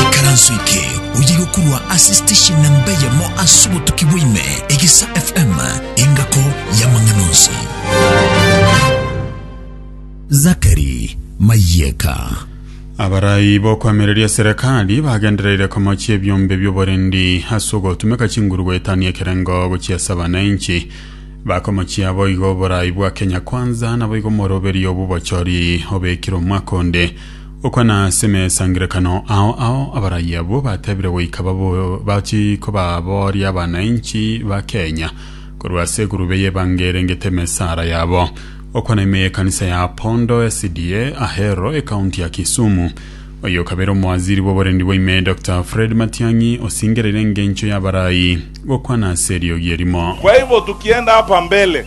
Ekaranso eke oyiga korwa ase station namba eyemo ase obotuki bwaime, Egesa FM, engako y'amang'ana onsi. Zachary Mayeka. Abarai b'okoamereria serikali bagendereire komochia ebiombe by'oborendi ase ogotumeka chinguru goetania ekerengo gochia ase abananchi. Bakomochia boigo oborai bwa Kenya Kwanza naboigo omoroberio bw'obochori obekire omwaka onde. Okwa na ase emesangerekano ao ao abarai abwo batebire goika bachi kobabooria abanainchi ba Kenya korwa ase egurube y'ebango erengete emesara yabo. Okwa na ime y'ekanisa ya Apondo SDA Ahero, ekaunti ya Kisumu, oyio okabeire omowaziri bw'oborendi bwa ime Doctor Fred Matiang'i osingereire engencho y'abarai gokwana ase eriogi erimo. Kwa hivyo tukienda hapa mbele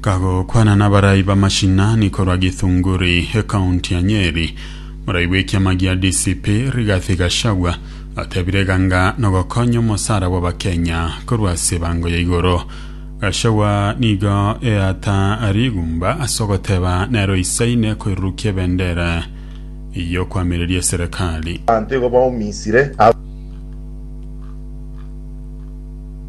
Kagokwana n'abarai b'amashinani korwa Githunguri, ekaunti ya Nyeri, morai bw'ekiama gia DCP Rigathi Gachagua atebire iga ng'a nogokonya omosara bw'Abakenya korwa ase ebango ya igoro. Gachagua nigo eata rigumba ase ogoteba nero isaine koirurukia ebendera y'okoamereria eserekari. Abanto igo baumisire.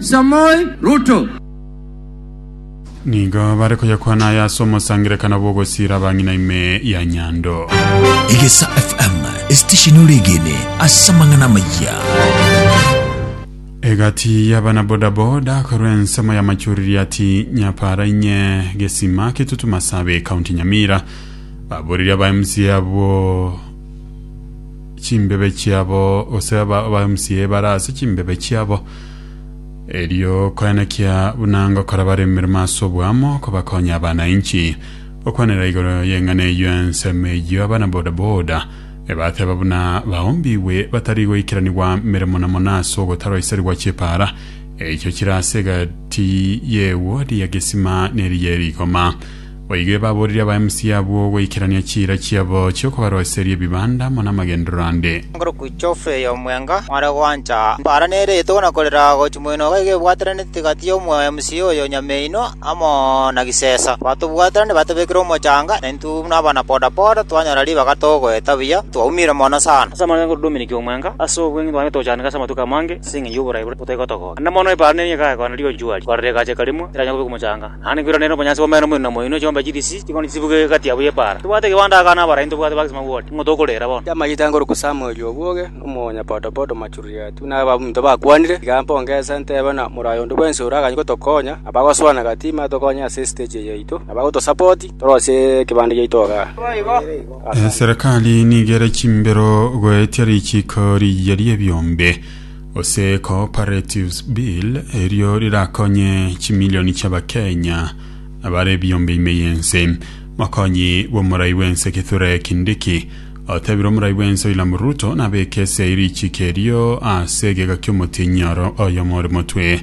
Samoei Ruto. Nigo bare koyakwana aya ase omosangererekano bw'ogosiira abang'ina ime ya Nyando. Egesa FM, esitesheni oregene ase amang'ana amayia. Egati y'abana bodaboda korwa ensemo ya Machuririati Nyapara inye Gesima Kitutu Masabe County Nyamira baburiri aba MCA abo chimbebe chiabo gose aba aba MCA bara ase chimbebe chiabo Erio koenekia buna ngokora bare emeremo ase oboamo kobakonya abanainchi. Gokwanera igoro y'eng'ana eyio ensemo eyio abana bodaboda ebateba buna baombigwe batari goikeranigwa meremo na mono ase ogotaroiserigwa chipaara eichio chire ase egati y'eguodi ya gesima neriya erikoma. Boigo ebaboorire aba MC abwo goikerania chiira chiabo chi'okobaroiseria ebibanda amo namagenderero ande. Igoro ku chofu eye omwenga mware gwancha mbara nere etogo na korera gochi moino iga iga ebwateraneti gati y'omo MC oyo nyameinwa amo na gisesa batobwaterane batobekire omochanga na intwe buna abana poda poda twanyora ribaga togoeta buya twaumire mono sana ase amang'ana y'okododomeneki omwenga ase obweng'e twabire tochandeka ase amatuko amange ase eng'encho y'oborai boria botaigotogora naende mono ebara neri egakwana rigonchuari korera egacheka rimwe eranyare kobekwa omochanga Naende nkwiranere obonyansi bw'omeno omoino na moino, chiombe chirisi chikoni chibuge egati yabo y'epaara. Tobwate gewanto aka nabaraia ntobwate bagisima bwoti, nigo tokorera bono. Chiamagita ngorokwa Samueli obwoge, nomonyapotopoto Machuria-tu, na abaminto bakwanire, tiga mponge ense ntebe ng'a moraia onde bwensi ore agachia gotokonya, na bagoswana gatima atokonye ase esiteji eye yaito, na bagotosapoti torosie ekebande giaito igaa. Eserekari nigo ere chimbero goetia richiiko riiya ri'ebiombe. Gose cooperatives bill erio rirakonye chimilioni chi'Abakenya abare ebiombe ime y'ense. Mokonyi bw'omorai bw'ense Kithure Kindiki otebire omorai bw'ense William Ruto nabeke ase richiko erio ase egeka ki'omotienyi oro oyomo ore motwe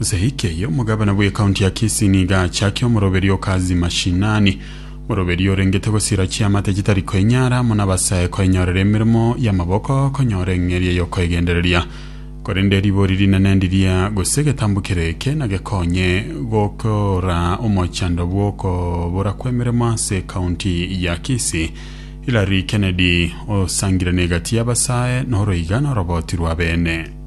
Nseiki eye omogabana bw'ekaunti ya Kisii nigo achakia omoroberio o Kazi Mashinani, moroberio orengete gosira chiamate chitari koinyara amo nabasae koenyorera emeremo y'amaboko konyora eng'eria y'okoegendereria. Korende ribori rinene ndiria gose egetambukero eke nagekonye gokora omochando bw'okobora kw'emeremo ase ekaunti ya Kisii. Hilary Kennedy osangire negati y'abasae noro iga noroboti rw'abene.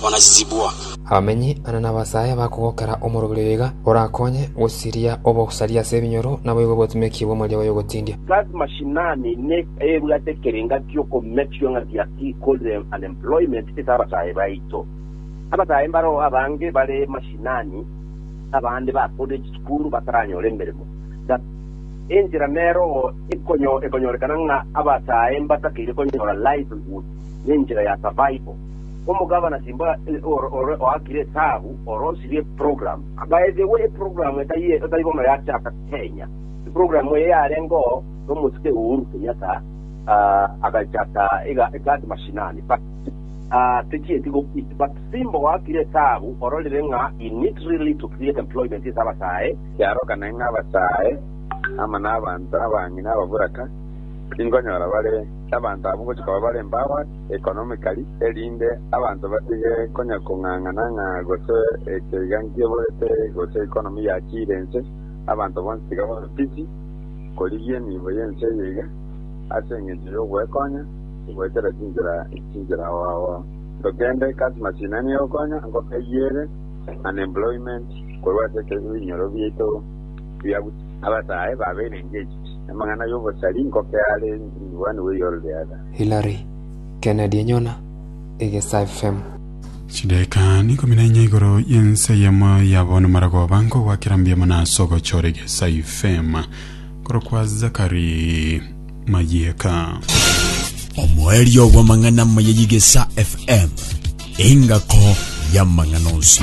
bonazizibwa. Abamenyi ane nabasae bakogokera omorobiri oyoiga, orakonye gosiria obosaria ase ebinyoro naboigo botimeki bw'omoria bw'oyogotindia. Kazi mashinani ne ebwate ekerenga giokomechwa ng'a gia ki called unemployment ase abasae baito. Abasae mbaroo abange bare mashinani, abande ba college school bataranyora emeremo. Ga enchera neroo ekonyorekana ng'a abasae mbatakeire konyora livelihood ne enchera ya survival. Omogabana Simba ore ore oakire etaabu ore osirie eprogram. By the way eprogram etari etari bono yachaka Kenya. Eprogram eye yarengeo nomotuke Uhuru Kenyatta ah, agachaka iga ekati mashinani but ah, techieti gokiti but Simba oakire etaabu ororire ng'a he need really to create employment ase abasae Kiaroka naende abasae ama nabanto abang'ina ababuraka, inkonyora bare abanto abwo gochia koba bare empowered. economically, erinde abanto batige konya kong'ang'ana ng'a gose ekeiga nkiborete gose economy yachiire ense, abanto bonsi tiga babe busy korigia emiibo y'ense eye iga, ase engencho y'ogwekonya goetera chinchera chinchera ao ao. Tokende customers ina nigo ekonya ngokayiere unemployment korwa ase ebinyoro biaito bia abasaae babeire engaged. Amang'ana y'obosari ngokeare in one way or the other. Hillary, Kennedy enyona egesae fem. Chidaeka ikomi na inya igoro y'ense eyemo yabo namarogoba nkogwakera mbuya mono ase ogochora egesae fem korokwa Zachary Mayieka. Omoerio bw'amang'ana amaya y'Egesa FM, engako y'amang'ana onsi.